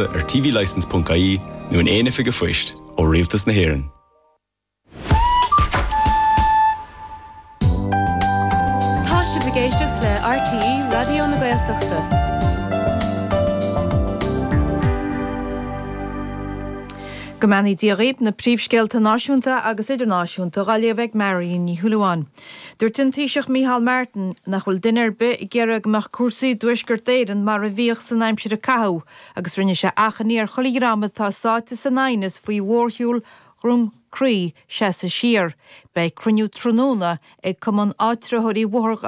ar tvlicense.ie nó in aon oifig an phoist ó Rialtas na hÉireann. Tá sibh ag éisteacht le RTÉ Raidió na Gaeltachta. Go mbeannaí Dia dhaoib, na príomhscéalta náisiúnta agus idirnáisiúnta dhá léamh ag Marion Ní Shúilleabháin. Dúirt an Taoiseach Micheál Martin nach bhfuil duine ar bith ag iarraidh go mbeadh cúrsaí i dTuaisceart Éireann mar a bhíodh san aimsir a caitheadh agus rinne sé achainí ar chuile dhream atá sáite san aighneas faoi mhórshiúl Dhroim Crí seasamh siar. Beidh cruinniú tráthnóna ag Cumann Áitritheoirí Bhóthar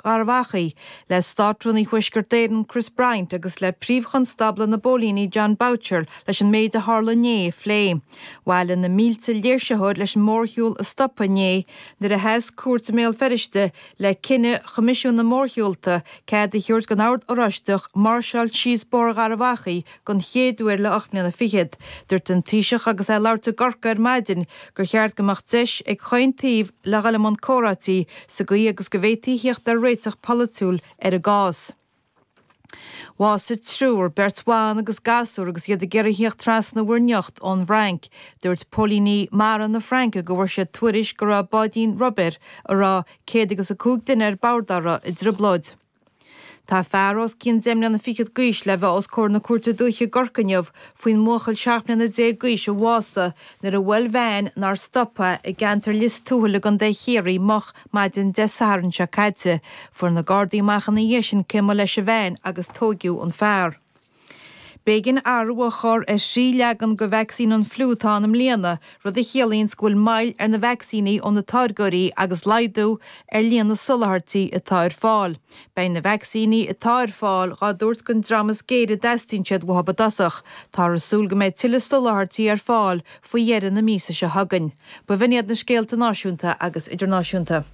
Gharbh Achaidh le Státrúnaí Thuaisceart Éireann Chris Bryant agus le Príomh-Chonstábla na bPóilíní Jon Boucher leis an méid a tharla inné a phlé. Bhailigh na mílte léirsitheoir leis an mórshiúl a stopadh inné nuair a sheas cúirt i mBéal Feirste le cinneadh Choimisiún na Mórshiúlta cead a thabhairt don Ord Oráisteach máirseáil síos Bóthar Gharbh Achaidh den chéad uair le ocht mbliana fichead. Dúirt an Taoiseach agus é ag labhairt i gCorcaigh ar maidin gur cheart go mbeadh deis ag chaon taobh le dhul i mbun comhráití sa gcaoi agus go bhféadfaí theacht ar réiteach polaitiúil ar an gcás. Bhásaigh triúr, beirt bhan agus gasúr agus iad ag iarraidh theacht trasna Mhuir nIocht ón bhFrainc. Dúirt póilíní mara na Fraince go bhfuair siad tuairisc go raibh báidín rubair a raibh céad agus a cúig duine ar bord a raibh i dtrioblóid. Tá fear os cionn deich mbliana fichead d'aois le bheith os comhair na Cúirte Dúiche i gCorcaigh inniu faoin mbuachaill seacht mbliana déag d'aois a bhásaigh nuair a bhuail veain nár stop é i gceantar Lios Tuathail i gContae Chiarraí moch Maidin Dé Sathairn seo caite, fuair na Gardaí amach ina dhiaidh sin cé mba leis an veain agus tóigeadh an fear. B'éigin athrú a chur ar thrí leagan de vacsaín an fliú atá ann i mbliana, rud a chiallaíonns go bhfuil moill ar na vacsaíní ó na táirgeoirí agus laghdú ar líon na soláthairtí atá ar fáil. Beidh na vacsaíní atá ar fáil dhá dtabhairt den dream is géire a dteastaíonn siad uathu i dtosach. Táthar ag súil go mbeidh tuilleadh soláthairtí ar fáil faoi dheireadh na míosa seo chugainn. B'in iad na scéalta náisiúnta agus idirnáisiúnta.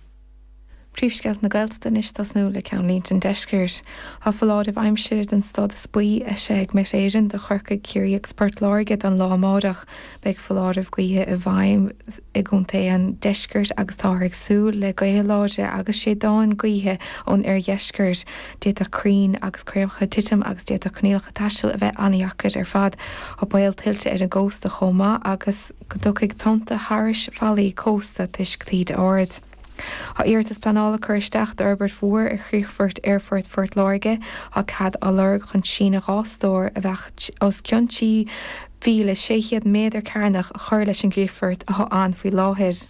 Príomhscéalta na Gaeltachta anois ag tosnú le ceannlínte an Deiscirt. Tá foláireamh aimsire den stádas buí eisithe ag Met Éireann do Chorcaigh, Ciarraí agus Port Láirge don lá amárach. Beidh foláireamh gaoithe i bhfeidhm i gcontaetha an Deiscirt agus táthar ag súil le gaotha láidre agus séideáin gaoithe ón oirdheisceart. D'fhéadfadh crainn agus craobhacha titim agus d'fhéadfadh coinníollacha taistil a bheith an-deacair ar fad. Tá baol tuilte ar an gcósta chomh maith agus go dtiocfaidh tonnta thairis fallaí cósta toisc taoidí arda. Tá iarratas pleanála curtha isteach d'fhorbairt mhór ar chríochfort Aerfort Phort Láirge. Tá cead á lorg chun síneadh dhá stór, a bheadh os cionn 3,600 méadar cearnach, a chur leis an gcríochfort atá ann faoi láthair.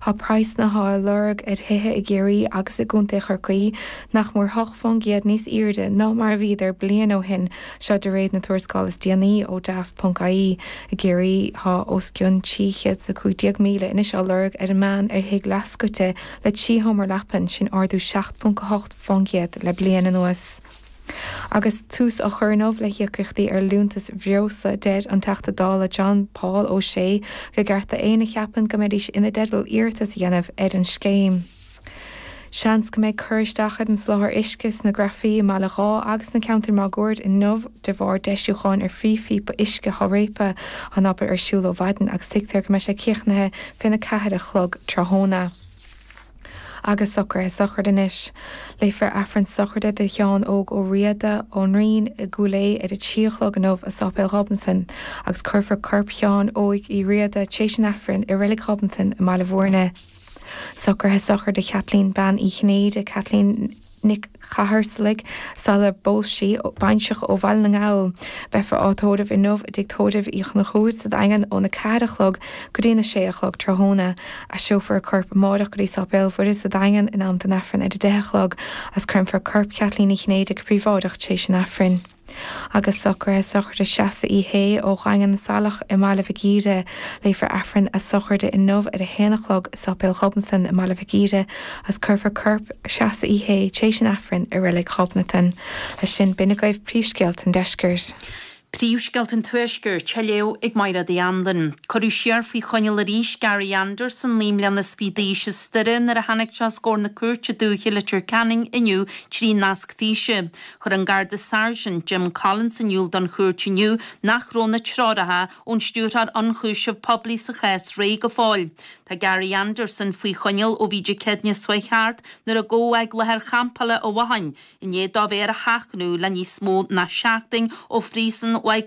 Tá praghsanna á lorg ar thithe i gCiarraí agus i gContae Chorcaí nach mór hocht fán gcéad níos airde ná mar a bhíodar bliain ó shin, seo de réir na tuarascála is déanaí ó Daft.ie. I gCiarraí tá os cionn 315,000 anois á lorg ar an meán ar thigh leathscoite le trí sheomra leapan, sin ardú 7.8 fán gcéad le bliain anuas. Agus tús á chur inniu le híocaíochtaí ar liúntais bhreosla, deir an Teachta Dála John Paul O'Shea go gceart d'aoinne a cheapann go mbeidís ina dteideal iarratas a dhéanamh ar an scéim. Seans go mbeidh cur isteach ar an soláthar uisce sna Grafaí i mBaile Dháith agus sna ceantair máguaird inniu de bharr deisiúcháin ar phríomhphíopa uisce Sháraipa. Tá an obair ar siúl ó mhaidin agus tuigtear go mbeidh sé críochnaithe faoina ceathair a chlog tráthnóna. agus socraithe sochraide anois. Léifear Aifreann sochraide do Sheán Óg Ó Riada ón Rinn i gCúil Aodha ar a trí a chlog inniu i Sáipéal Ghobnatan agus cuirfear corp Sheáin Óig Uí Riada tar éis an Aifrinn i Reilig Ghobnatan i mBaile Mhúirne. Socraithe sochraide Chaitlín Bean Uí Chinnéide Caitlín. Nic Chatharsalaigh, sula bpós sí baintreach ó Bhaile na nGall. Beifear á tórramh inniu i dTigh Tórraimh Uí Chonchúir sa Daingean óna ceathair a chlog go dtí na sé a chlog tráthnóna. Aistreofar a corp amárach go dtí Sáipéal Mhuire sa Daingean in am don Aifreann ar a deich a chlog agus créamfar corp Cheaitlín Uí Chinnéide go príobháideach tréis an Aifrinn. Agus socraithe sochraide Treasa Uí Shé ó Dhaingean na Saileach i mBaile Mhic Íre. Léifear Aifreann a sochraide inniu ar a haon a chlog i Sáipéal Ghobnatan i mBaile Mhic Íre agus cuirfear corp Treasa Uí Shé tar éis an Aifrinn i Reilig Ghobnatan. Leis sin b'in agaibh príomhscéalta an Deiscirt. Príomhscéalta an Tuaiscirt á léamh ag Maighread Uí Anluain. Cuireadh siar faoi choinneáil arís Gary Anderson, naoi mbliana is fiche d'aois, as Doire nuair a tháinig sé os comhair na cúirte dúiche i Leitir Ceanainn inniu trí nasc físe. Chuir an Garda Sergeant Jim Collins in iúl don chúirt inniu nach raibh na treoracha ón Stiúrthóir Ionchúiseamh Poiblí sa chás réidh go fóill. Tá Gary Anderson faoi choinneáil ó bhí Dé Céadaoin seo chuaigh thart nuair a gabhadh é ag láthair champála i bhFathain i ndiaidh dó a bheith ar a sheachnadh le níos mó ná seachtain ó Phríosún Mhaigh